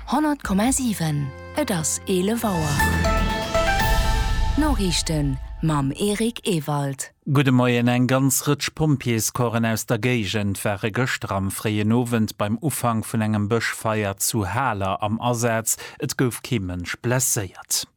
100,7 Et ass 11 Auer. D'Noriichten mam Eric Ewald. Gudde Moien, Eng ganz Rëtsch Pompjeescorpsen aus der Géigend ware gëschter am fréien Owend beim Ufank vun engem Bëschfeier zu Haler am Asaz. Et gouf kee Mënsch blesséiert.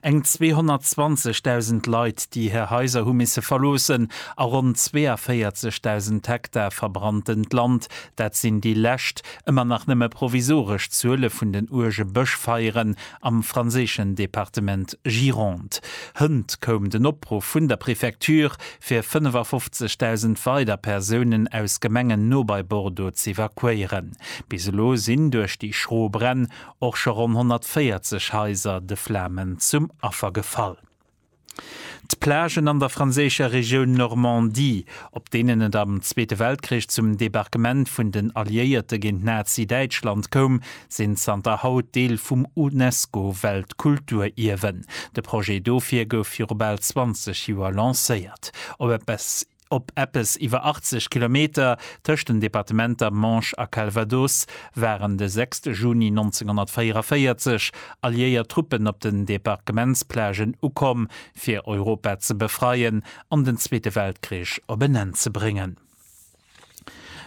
Eng 220.000 Leit, déi hir Haiser hu misse verloossen a ronn 42.000 Hektar verbrannt-ent Land, dat sinn déi lescht, ëmmer nach nëmme provisoresch Zuele vun den uerge Bëschfeieren am franséischen Departement Gironde. Hënt koum den Opruff vun der Prefecture, fir 55.000 weider Persounen aus Gemengen no bei Bordeaux z'evakuéieren. Bis elo sinn duerch déi schro Bränn och scho ronn 140 Haiser de Flamen zum Affer gefall. D'Plagen an der franséischer Regioun Normandie, op deenen et am Zweete Weltkrich zum Debarquement vun den Alliéierte géint Nazi-Däitschland koum, sinn zanter haut Deel vum UNESCO-Weltkulturierwen. De Projet dofir gouf viru bal 20 Joer lancéiert. Op eppes Op eppes iwwer 80 Kilometer, tëscht den Departementer Manche a Calvados, waren de 6 Juni 1944 alliéiert Truppen op den Debarquementsplagen ukomm, fir Europa ze befreien an den Zweete Weltkrich op en Enn ze bréngen.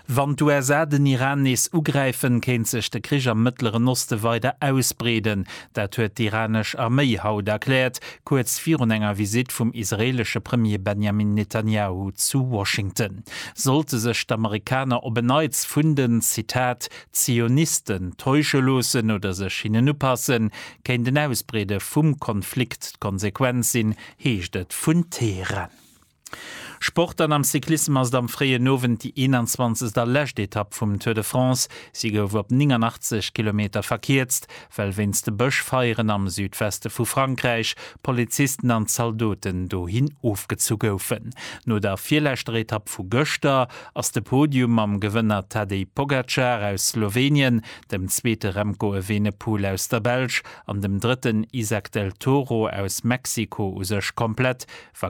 Wann d'USA den Iran nees ugräifen, kéint sech de Krich am Mëttleren Oste weider ausbreeden. Dat huet d'iranesch Arméi haut erkläert, kuerz virun enger Visitt vum israeelesche Premier Benjamin Netanjahu zu Washington. Sollte sech d'Amerikaner op en Neits vun den, Zitat, Zionisten täusche loossen oder sech hinnen upassen, kéint en Ausbreede vum Konflikt d'Konsequenz sinn, heescht et vun Teheran. Sport an am Cyclissem ass et am fréien Owend déi 21 a lescht Etapp vum Tour de France. Si gouf op 89 Kilometer verkierzt, well wéinst de Bëschfeieren am Südweste vu Frankräich Polizisten an Zaldoten dohin ofgezu goufen. No der virleschter Etapp vu gëschter ass de Podium mam Gewënner Tadej Pogacar aus Slowenien, dem zweete Remco Evenepoel aus der Belsch an dem drëtten Izack Del Toro aus Mexiko u sech komplett. Wa